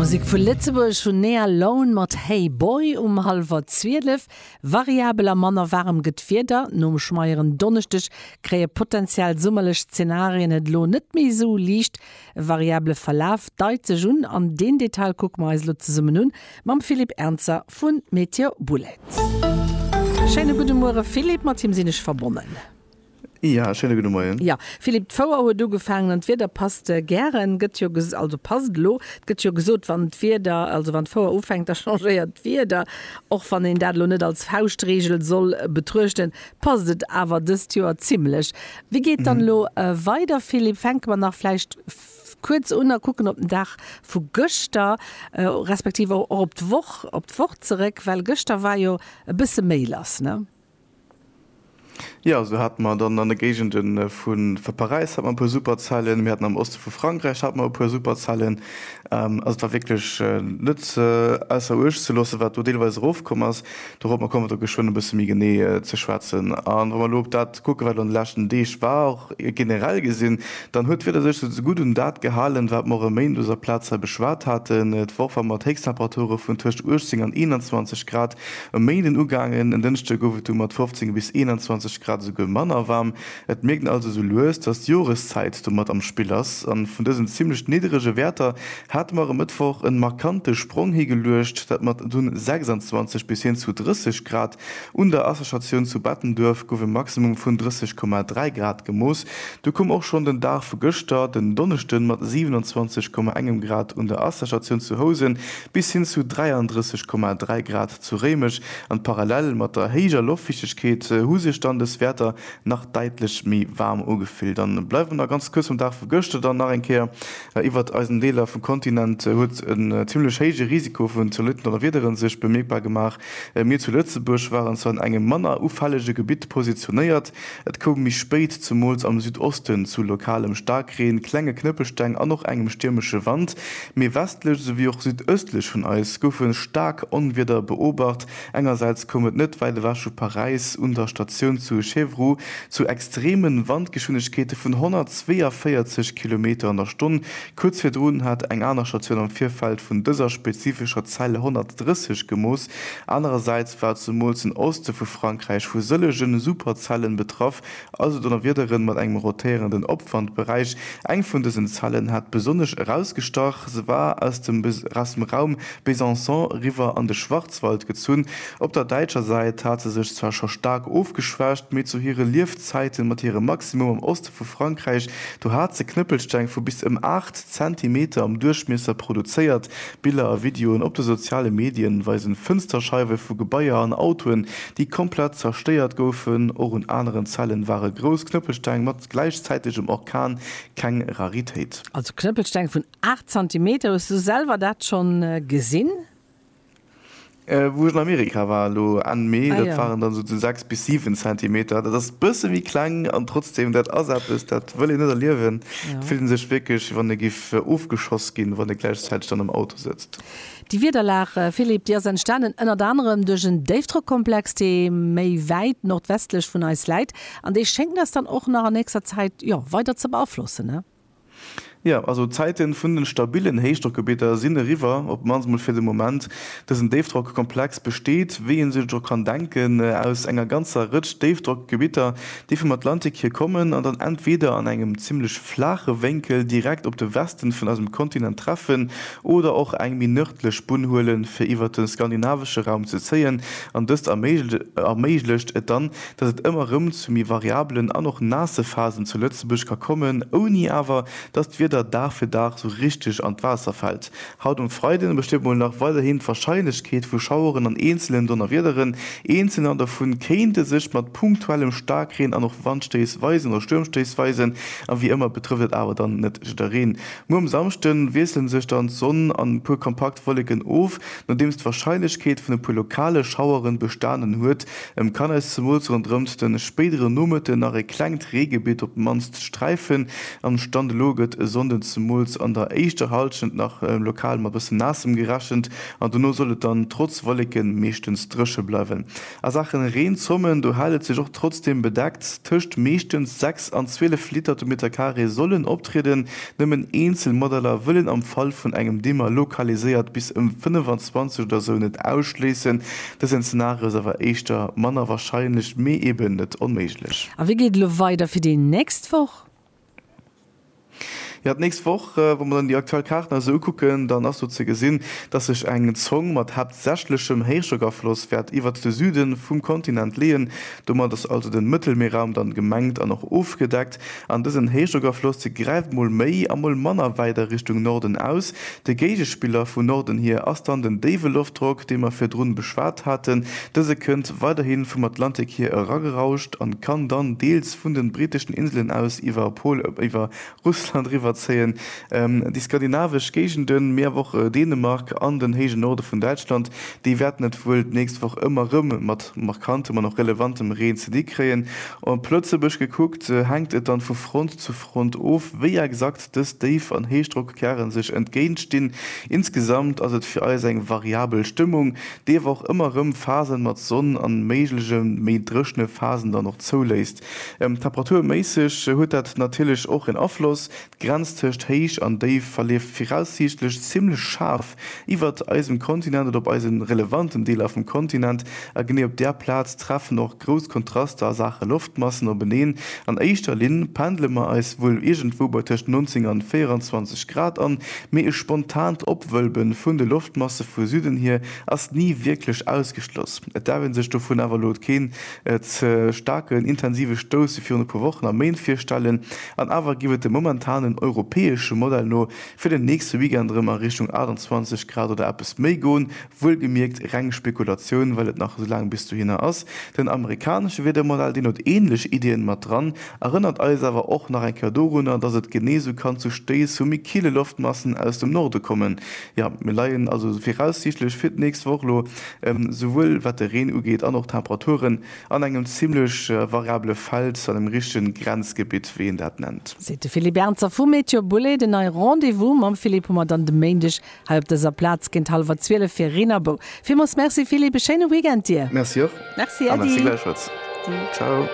Musek vu Lëtzebuerg hunn Nea Lone mat Hey Boy um hallwer 12. Variabel a manner waarem gëtt d'Wieder. Nom schmeieren Donneschdeg kréie potentiell summerlech Zenarien et elo net méi esou liicht. E variable Verlaf deit sech un an deen Detail kucke mer eis elo zesummen un mam Philippe Ernzer vu Meteo Boulette. Schéine gudde Muere Philippe, mat him sinn ech verbonnen. Ja, schéine gudde Moien. Ja, Philippe, d'Fouer huet ugefaangen an d'Wieder passt gären, gëtt jo ges-, also passt elo, et gëtt jo gesot, wann d'Wieder, also wann d'Fouer ufänkt, da changéiert d'Wieder. Och wann een dat elo net als Fauschtregel soll betruechten, passt et awer dëst Joer zimmlech. Wéi geet dann elo weider, Philippe? Fänke mer nach vläicht kuerz un a kucken op den Dag vu gëschter, respektiv och op d'Woch, op d'Woch zeréck, well gëschter war jo e bësse méi lass, ne? Jo, sou hate mer dann an de Géigende vu vu Paräis hat mer e puer super Zellen, mir haten am Oste vu Frankräich hate mer e puer super Zellen. Also et war wierklech net ausser uecht ze loossen, wat do deelweis erofkomm ass. Dorop, mer kommen do geschwënn e bësse méi genee ze schwätzen. A wa mer elo op dat kucken, wat elo an de leschten Deeg war, och generell gesinn, dann huet d'Wieder sech esou ze gutt un dat gehalen, wat mer och e Méinden op dëser Plaz hei beschwat haten. Et war och wa mer d'Héichsttemperature vun tëscht 18 an 21 Grad E Méinden ugaangen, en Dënschde gouf et du mat 15 bis 21 Grad esouguer manner waarm. Et mierkt een also esou lues, dass d'Joreszäit do mat am Spill ass. A vun dësen zimmlech nidderege Wäerter hate mer e Mëttwoch e markante Sprong higeluecht. Dat mat dunn 26 bis hin zu 30 Grad. Un der Asserstatioun zu Bettenduerf gouf e Maximum vun 30,3 Grad gemooss. Du koum och schonn den Dag vu gëschter, den Donneschde mat 27,1 Grad un der Asserstatioun zu Housen bis hin zu 33,3 Grad zu Réimech, an parallel mat der héijer Loftfichtegkeet hu sech dann des Wäerter nach däitlech méi waarm ugefillt an bleiwen nach ganz kuerz mam Dag vu gëschter dann nach eng Kéier iwwert eisen Deeler vum Kontinent. Huet en zimmlech héije Risiko vun zolidd Donnerwiederen sech bemierkbar gemaach. Mir zu Lëtzebuerg waren zwar an engem manner ufällege Gebitt positionéiert, Et koum méi spéit, zumools am Südosten, zu lokalem Staarkreen, klenge Knëppelsteng an och engem stiermesche Wand. Méi westlech esouwéi och südöstlech vun eis goufe staark Onwieder beobacht. Engersäits koum et net wäit ewech vu Paräis un der Statioun zu Chevroux zu extreeme Wandgeschwindegkeete vun 142 Kilometer an der Stonn, Kuerz virdrun hat eng aner Statioun am Virfeld vun dëser spezifescher Zeil 130 gemooss. Anerersäits war zumools den Oste vu Frankräich vu sëllege Superzellen betraff, also Donnerwiederen mat engem rotéierenden Opwandberäich. Eng vun dësen Zellen hat besonnesch erausgestach, se war aus dem Raum Besançon riwwer an de Schwarzwald gezunn. Op der däitscher Säit hat se sech zwar scho staark ofgeschwächt, mee zu hire Liefzäiten mat hirem Maximum am Oste, vu Frankräich, do hat se Knëppelsteng vu bis ëm 8 Zentimeter am Duerchmiesser produzéiert. Biller a Videoen op de soziale Medien weisen Fënsterscheiwe vu Gebaier an Autoen, déi komplett zerstéiert goufen. Och un aneren Zellen ware grouss Knëppelsteng mat gläichzäitegem Orkan keng Raritéit. Also Knëppelsteng vun 8 Zentimeter, hues du selwer dat schonn gesinn? Wou ech an Amerika war elo Enn Mee, dat waren dann esou 6 bis 7 Zentimeter. Dat ass e bësse méi kleng an trotzdeem dat ass eppes, dat wëll een net erliewen. Et fillt ee sech wierklech, wéi wann ee giff ofgeschoss ginn, wann ee gläichzäiteg dann am Auto sëtzt. Déi Wiederlag, Philippe, déi ass entstanen ënnert anerem duerch en Déifdrockkomplex, dee méi wäit nordwestlech vun eis läit an dee schéngt eis dann och nach an nächster Zäit weider ze beaflossen. Jo, also d'Zäiten vun den stabilen Héichdrockgebidder sinn eriwwer, op d'mannst mol fir de Moment. Dësen Déifdrockkomplex besteet, wéi een sech et och kann denken, aus enger ganzer Rëtsch Déifdrockgebidder, déi vum Atlantik hier kommen an dann entweder an engem zimlech flaache Wénkel direkt op de Westen vun eisem Kontinent treffen oder och eng méi nërdlech Bunn huelen fir iwwert de skandinavesche Raum ze zéien an dëst erméiglecht et dann dass et ëmmer erëm zu méi variabelen an och naasse Phasen zu Lëtzebuerg ka kommen, ouni awer dass d'Wieder Dag fir Dag sou richteg an d'Waasser fält. Haut um Freiden besteet mol nach weiderhin d'Warscheinlechkeet vu Schaueren an eenzelen Donnerwiederen, eenzelne an dovun kéinte sech mat punktuellem Staarkreen an och Wandstéiss weisen oder Stuermstéiss weisen, a wéi ëmmer betrëfft et awer dann net jiddereen. Muer um Samschde wiesselen sech dann d'Sonn an e puer kompakt Wolleken of, nodeems d'Warscheinlechkeet vun e puer lokale Schaueren bestanen huet, Em kann eis zemools ronderëmt den spéideren Nomëtten nach e klengt Reegebitt op d'mannst sträifen, am Stand elo gëtt e Sonnden zemools an der éischter Halschent nach lokal mat bëssen Naassem gerechent an dono soll et dann trotz Wolleken meeschtens drëche bleiwen. A Saachen Reenzommen, do hält et sech och trotzdem bedeckt, tëscht meeschtens 6 an 12 Liter de Meter Carré sollen optrieden, nëmmen eenzel Modeller wëllen am Fall vun engem Dimmer lokaliséiert bis ëm 25 oder sou net ausschléissen, Dësen Szenario ass awer éischter manner warscheinlech, mee eben net onméiglech. A wéi geet et elo weider fir déi nächst Woch? Jo, d'nächst Woch, wa mer dann déi aktuell Kaarten eis esou ukucken, dann ass do ze gesinn, dass sech eng Zong mat haaptsächlechem Héichdrockafloss wäert iwwert de Süde vum Kontinent leeën. Domat ass also de Mëttelmierraum dann gemengt an och ofgedeckt. An dësen Héichdrockafloss gräift mol méi a mol manner wäit a Richtung Norden aus. De Géigespiller vun Norden hier ass dann den déiwe Loftdrock, dee mer virdrun beschwat haten. Dëse kënnt weiderhi vum Atlantik hier eragerauscht an kann dann deels vun den britteschen Inselen aus iwwer Polen, iwwer Russland eriwwerzéien, déi skandinavesch Géigenden, mee awer och Dänemark an den héije Norde vun Däitschland. Déi wäerten et wuel d'nächst Woch ëmmer rëm mat. markantem an och relevantem Reen ze di kréien. Op Lëtzebuerg gekuckt, hänkt et dann vu Front zu Front of, wéi exakt dës Déif an Héichdrockkerren sech entgéintstinn. Insgesamt ass et fir eis eng variabel Stëmmung, déi awer och ëmmer rëm Phasen mat Sonn an méiglege méi dréchne Phasen dann och zouléisst. Temperaturméisseg huet dat natierlech och en Afloss, D'Grenz tëscht Héich an Déif verleeft viraussiichtlech zimmlech schaarf iwwert eisem Kontinent oder op eise relevanten Deeler vum Kontinent, a genee op där Plaz treffen och grouss Kontraster a Saache Loftmassen openeen. An éischter Linn pendle mer eis wuel iergendwou bei tëscht 19 an 24 Grad an, mee e spontaant Opwëlbe vun de Loftmasse vu Süden hier ass ni wierklech ausgeschloss. Et daf ee sech dovun awer elo keen E staarken, intensive Stouss wéi virun e puer Wochen a Méint virstellen, an awer giff et dem momentanen europäesche Modell no fir den nächste Weekend erëm a Richtung 28 Grad oder eppes méi goen. Wuelgemierkt reng Spekulatioun, well et nach esou laang bis dohinner ass. Den amerikanesche Wiedermodell, deen huet ähnlech Iddien mat dran, erënnert eis awer och nach eng Kéier dorunner, dass et genee esou kann zu Stéiss vu méi kille Loftmassen aus dem Norde kommen, Jo, mir leien also viraussiichtlech fir d'nächst Woch elo, souwuel wat de Reen ugeet an och d'Temperaturen, an engem zimmlech variabele Feld, engem richtegen Grenzgebitt, wéi een dat nennt. Seet de Philippe Ernzer vu Météo Boulay. Den neie Rendez-vous mam Philippe hu mer dann de Méindeg hei op dëser Plaz géint hallwer 12 fir Reenerbou. Villmools Merci Philippe, e schéine Weekend dir! Merci och Merci, a merci gläichfalls. Äddi. Ciao.